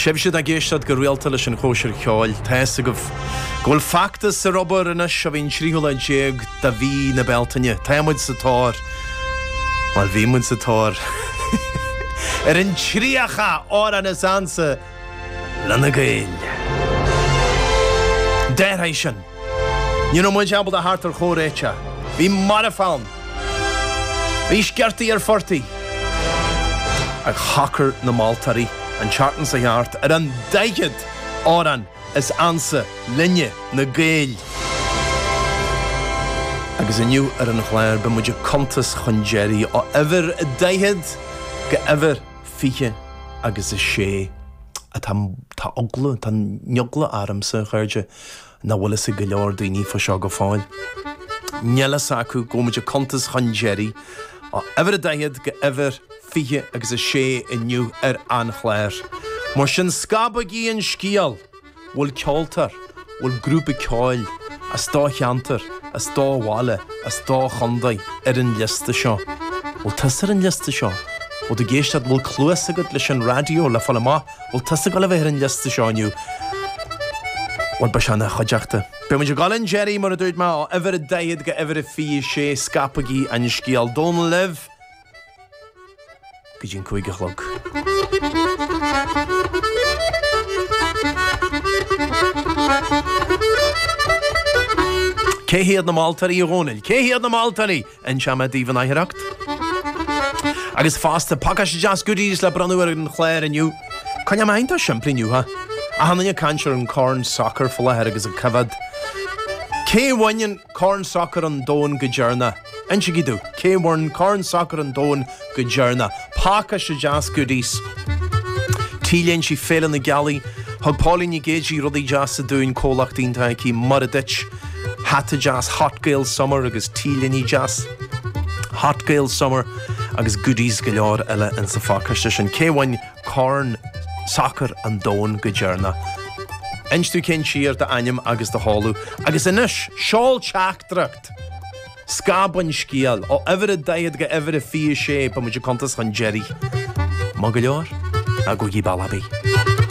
Sibhse atá ag éisteacht go rialta leis an Chóisir Cheoil, tá fhios agaibh go bhfuil feachtas ar obair anois ó bhí an 13 lá de mhí na Bealtaine. Tá muid sa tóir. Bhuel, bhí muid sa tóir. ar an 30 amhrán is ansa linne Gaeil. D'athraigh sin. Ní raibh muid ábalta theacht ar chomhréiteach. Bhí marfach ann. Bhí sciortaí ar phortaigh. Ach shocair na moltóirí, an tseachtain seo thart, ar an daichead amhrán is ansa linne, na Gaeil. Agus inniu ar an chlár, beidh muid ag cuntas chun deiridh, ó uimhir a daichead go uimhir fiche agus a sé. Tá eagla, tá an eagla ormsa, a chairde. nach bhfuil fhios ag go leor daoine fá seo go fóill. Níl fhios acu go bhfuil muid ag cuntas chun deiridh, ó uimhir a daichead go uimhir fiche agus a sé inniu ar an chlár. Mar sin scabaigí an scéal! Bhfuil ceoltóir, bhfuil grúpa ceoil, as do cheantar, as do bhaile, as do chontae, ar an liosta seo. Bhfuil tusa ar an liosta seo? Bhfuil tú ag éisteacht, bhfuil cluas agat leis an raidió le fáil amach? Bhfuil tusa ag dul a bheith ar an liosta seo inniu? Bhuel, beidh sé ina chuideachta. Beidh muid ag dul chun deiridh, mar a dúirt mé, ó uimhir a daichead go uimhir a fiche a sé, scaipigí an scéal Dónall libh go dtí an cúig a chlog. Cé hiad na moltóirí, a Dhónaill? Cé hiad na Máltairí? Inseoidh mé daoibh in aicearracht. Agus fosta, pacáiste deas goodies le bronnadh ar an chlár inniu. Coinneoidh mé iontach simplí inniu. Tá achan duine ag caint ar an Corn Sacair fá láthair agus ag coimheád, Cé bhain an Corn Sacair an Domhain go deireanach? Insígí domh, cé bhain Corn Sacair an Domhain go deireanach. Pacáiste deas goodies T-léinte Féile na Gealaí. Thug Pauline Nic Géidigh rudaí deasa dúinn, comhlacht iontach aici Mora Duit, hata deas Hot Gael Summer agus T-léine deas Hot Gael Summer agus goodies go leor eile in sa phacáiste sin. Cé bhain Corn Sacair an Domhain go deireanach? Inis domh cén tír d'ainm agus do sheoladh. Agus anois, seol teachtaireacht! Scaip an scéal ó uimhir a daichead go uimhir a fiche a sé, beidh muid ag cuntas chun deiridh. Maith go leor, agóidí Ballyabee.